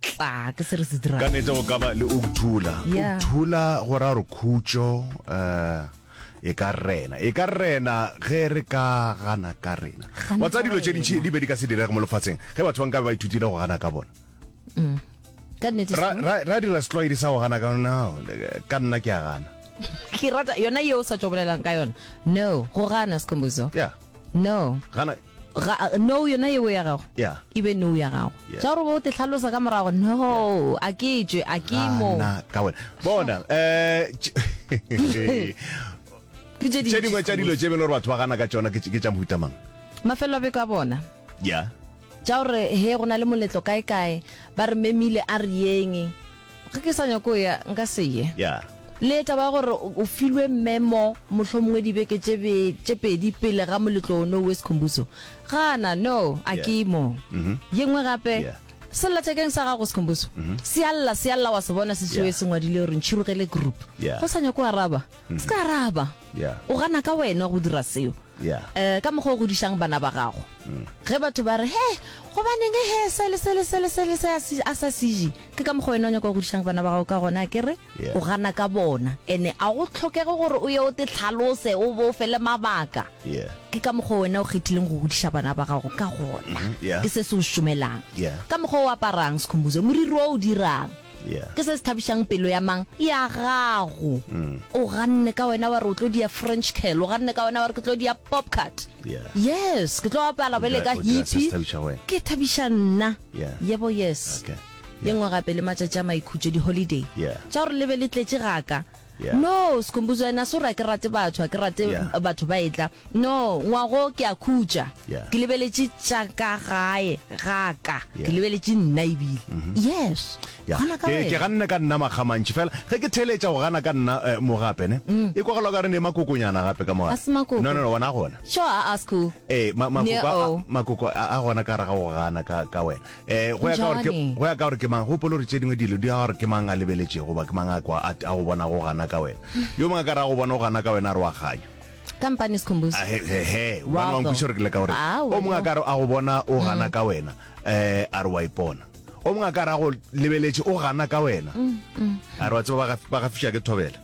tla ke se re se dirago. Ka nete go ka ba le ukthula. Yeah. Ukthula go ra gore khutšo eh e ka rena e ka rena ge re ka gana ka rena wa tsa dilo tše dintšhi di be di ka se direge mo lefatsheng ge batho ba nka be ba ithutile go gana ka bona mm. ra dira setlwaedi sa go gana ka ona ka nna ke a gana ke rata yona yeo sa tšobolelang ka yona no go gana sekombozo yeah no gana ga no yona yeo ya gago ya e be no ya gago ja gore o te tlhalosa ka morago no a ke tšwe a ke mo na ka wena bona eh tše dingwe tša dilo tše bele gore batho ba gana ka tsona ke tša mohuta mang mafelo a beko a bona ya ja gore he go na le moletlo kae kae ba re memile a re yeng Ge ke sa nyako ya, nka se ye. Yeah. Le taba ya gore o filwe memo mohlomongwe dibeke tše be tše pedi pele ga moletlo ono o Sikhumbuzo. Gana, no, a ke Yeah. mo. Mhm. Ye nngwe gape, Yeah. sellathekeng sa gago Sikhumbuzo, se a lla, se a lla wa se bona se sewe Yeah. se ngwadile gore Ntšhirogele Group. Yeah. Ge o sa nyako araba, se ka araba. Yeah. O gana ka wena go dira seo. Eh, ka mokgwa o godišang bana ba gago. Ge batho ba re, he, gobaneng he, se le se le se le se le se a si- a sa sije, ke ka mokgwa wena o nyaka go godišang bana ba gago ka gona, a ke re? O gana ka bona. Ene a go tlhokege gore o ye o te tlhalose, o bo o fe le mabaka. Ke ka mokgwa wena o kgethileng go godiša bana ba gago ka gona. Ke se se o šomelang. Ka mokgwa o aparang, Sikhumbuzo, moriri o o dirang. Ke se se thabišang pelo ya mang? Ya gago. Mm. O ganne ka wena wa re o tlo dia French curl, o ganne ka wena wa re ke tlo dia pop cut. Yes, ke tlo apala bele ka hippie. Ke thabiša nna. Yebo yes. Ye nngwe gape le matšatši a maikhutšo di-holiday. Tša gore le be le tletše gaka. No, Skhumbuzo and Asura ke rate batho, a ke rate batho ba etla. No, Ngwago ke a khutša. Ke lebeletše tša ka gae ga ka. Ke lebeletše nna ebile. Mm-hmm. Yes. Gana ka wena. Ke ganne ka nna makgamantši fela. Ge ke theletša go gana ka nna eh, mo gape ne. Mm. E kwagala ka re ne makokonyana gape ka mo. Ase makoko. No no no, wona gona. Sure, a ask who? Eh, ma makoko a gona ka ra ga go gana ka ka wena. Eh, go ya ka gore ke- Bjale. go ya ka gore ke mang gopolo gore tše dingwe dilo di ya gore ke mang a lebeletšego goba ke mang a kwa a a go bona go gana ka wena yo mongwe a ka re a go bona go gana ka wena a re wa kganya kampane sikhumbuzo Ah, he- he- he, Wa bana wa go. nkweša gore ke le ka gore Ah, o mongwe a wena. ka re a go bona o gana ka wena um a re wa ipona o mongwe a ka re a go lebeletše o gana ka wena a re wa tseba ba ga- ba gafiša ke thobela